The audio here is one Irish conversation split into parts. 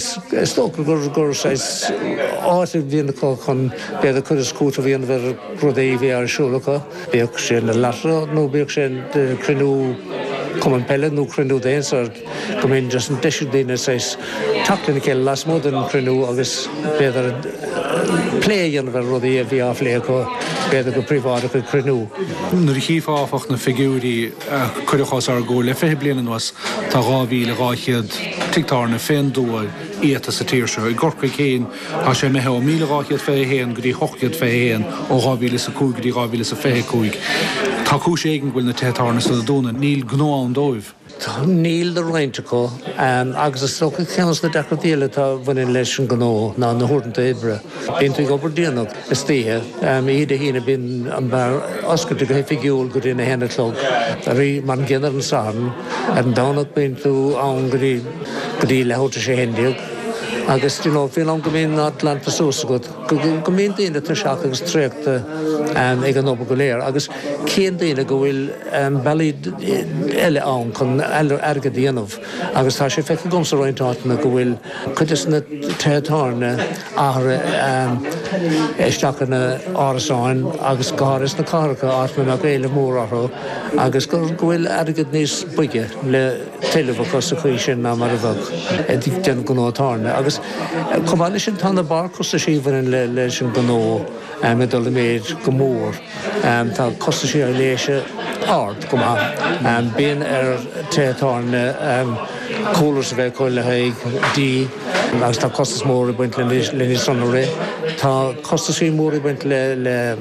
Is dócha gur saghas áit a dhéanann acu chun b'fhéidir cur is cúiteamh a dhéanamh ar rudaí a bhí ar siúl acu, bíodh sé ina lotto nó bíodh sé ina chruinniú cumann peile nó cruinniú daonsa. Go mbíonn deis ag daoine saghas teacht lena chéile lasmuigh den chruinniú agus b'fhéidir plé a dhéanamh ar rudaí a bhí á phlé acu b'fhéidir go príobháideach ag cruinniú. Nuair a chífeá áfach na figiúirí, a cuireadh os ár gcomhair le 20 bliain anuas tá 2,200 tigh tábhairne fén dtuath iata sa tír seo. I gCorcaigh féin tá sé imithe ó 1,200 fiche a haon go dtí hocht gcéad fiche a haon ó dhá mhíle is a cúig go dtí dhá mhíle is a fiche a cúig. Tá cúis éigin go bhfuil na tithe tábhairne san ag dúnadh. Níl gnó ann dóibh. Níl do roinnt acu ann agus is dócha ceann de na deacrachtaí eile atá a bhaineann leis an ngnó ná na huaireanta oibre. Bíonn tú ag obair déanach. istoíche. Oíche Dé hAoine bíonn an beár oscailte go hoifigiúil go dtí an 1 a chlog arís mar an gcéanna ar an Satharn. Ar an Domhnach bíonn tú ann go dtí go dtí leathuair tar éis a haon déag agus you know fén am go mbíonn an áit glanta suas agat go go mbíonn daoine tuirseach agus traochta ag an obair go léir agus cíonn daoine go bhfuil bealaí eile ann chun airgead a dhéanamh agus tá sé feicthe agamsa i roinnt áiteanna go bhfuil cuid de na tithe tábhairne athruithe isteach ina n-árasáin agus go háirithe sna cathracha, áit ina mbeadh éileamh mór orthu agus go bhfuil airgead níos boige le tuilleamh acu sa tslí sin ná mar a bheadh ag déanamh gnó tábhairne. Agus chomh maith leis sin tá na barrchostaisí a bhaineann leis an ngnó ag dul i méid go mór. Tá costas sé ar aibhléise ard go maith. Bíonn ar tithe tábhairne coolers a bheith acu le haghaidh dí agus tá costas mór ag baint le leo san a rith. Tá costaisí móra ag baint le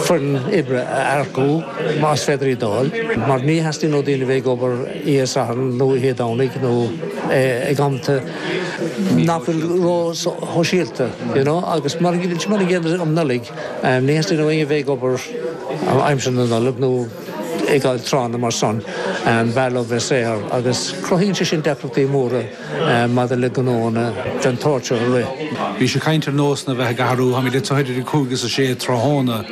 foireann oibre a earcú más féidir í d'fháil mar ní theastaíonn ó daoine a bheith ag obair Oíche Sathairn nó Oíche Domhnaigh nó ag amanta nach bhfuil ró-shóisialta, you know, agus mar an gcéanna um Nollaig. Ní theastaíonn ó dhaoine a bheith ag obair in aimsir na Nollag nó i gcomhair tráthanna mar san, b'fhearr leo bheith saor agus cruthaíonn sé sin deacrachtaí móra maidir le gnónna den tsórt seo a rith. Bhís ag caint ar nósanna a bheith ag athrú. Tá mé le tabhairt idir a cúig is a sé tráthnóna.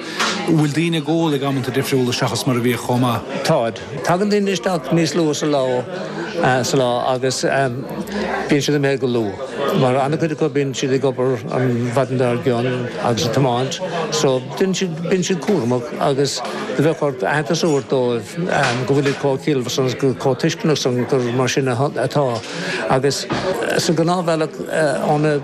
An bhfuil daoine ag ól ag amanta difriúla seachas mar a bhíodh chomh maith? Táid. Tagann daoine isteach níos luaithe sa lá agus bíonn siad imithe go luath mar an-chuid acu bíonn siad ag obair an mhaidin dár gcionn agus ag tiomáint so bíonn siad cúramach agus do bheadh ort aitheantas a thabhairt dóibh go bhfuil siad chomh ciallmhar san agus chomh tuisceanach san gur mar sin atá agus sa ghnáthbhealach ó na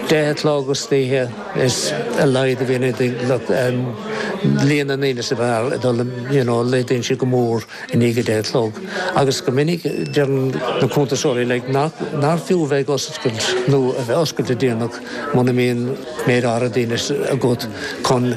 10 a chlog istoíche is a laghad, em, you know, líon na ndaoine sa mbeár ag dul, you know, laghdaíonn sé go mór i ndiaidh a deich a chlog. Agus go minic deireann na cuntasóirí, like, nach, nár fiú a bheith ag oscailt nó a bheith oscailte déanach muna mbíonn méid áirithe daoine agat chun,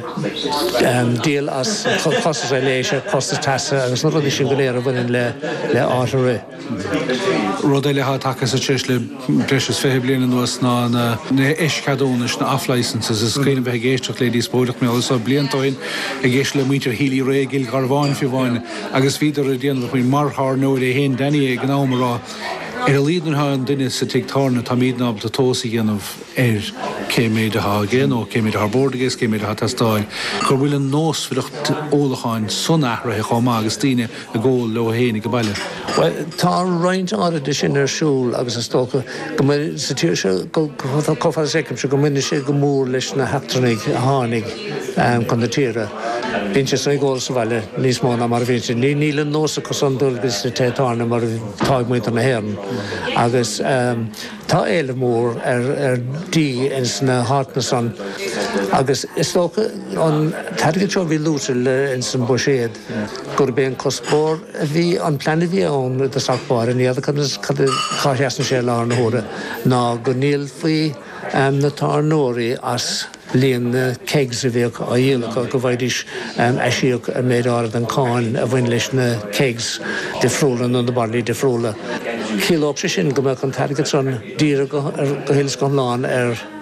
em, díol as costas an leictreachais, costas teasa agus na rudaí sin go léir a bhaineann le, le áit a rith. Rud eile atá tagtha sa treis le breis is fiche bliain anuas ná na h-eischeadúnais, na off-licences. Is cuimhin liom bheith ag éisteacht le díospóireacht blianta ó shin ag éisteacht le muintir Healy Rae i gCill Gharbháin fiú amháin agus bhíodar ag déanamh amach mar thábhairneoir é féin Danny ag an am ag rá ar a laghad nuair atá an duine sa tigh tábhairne táimid ábalta tomhas a dhéanamh ar cé méid atá aige nó cé méid atá ar bord aige is cé méid atá ag teastáil go bhfuil an nósmhaireacht ólacháin san athraithe chomh maith agus daoine ag ól leo fhéin ag an baile. Bhuel tá roinnt áirid de sin ar siúl agus is dócha go, sa tír seo chomh fada is a fheicimse go mbaineann sé go mór leis na heachtrannaigh a tháinig chun na tíre. Bíonn siadsan ag ól sa bhaile níos mó ná mar a bhíonn siad. Níl an nós acu san dul go dtí na tithe tábhairne mar atá ag muintir na hÉireann. Agus tá éileamh mór ar dhigh ins na háiteanna san agus is dócha an t-airgead seo a bhí luaite ins an mbuiséad, gurb é an cuspóir a bhí, an plean a bhí ann i dtosach báire, ní fheadar cad é, cá seasann sé i láthair na huaire, ná go ndíolfaí na tábhairneoirí as líon na kegs a bheadh á dhíol acu, go bhfaighidís aisíoc ar méid áirid den cháin a bhain leis na kegs difriúla nó na bairillí difriúla. Chiallódh sé sin go mbeadh an t-airgead san dírithe go huile is go hiomlán ar.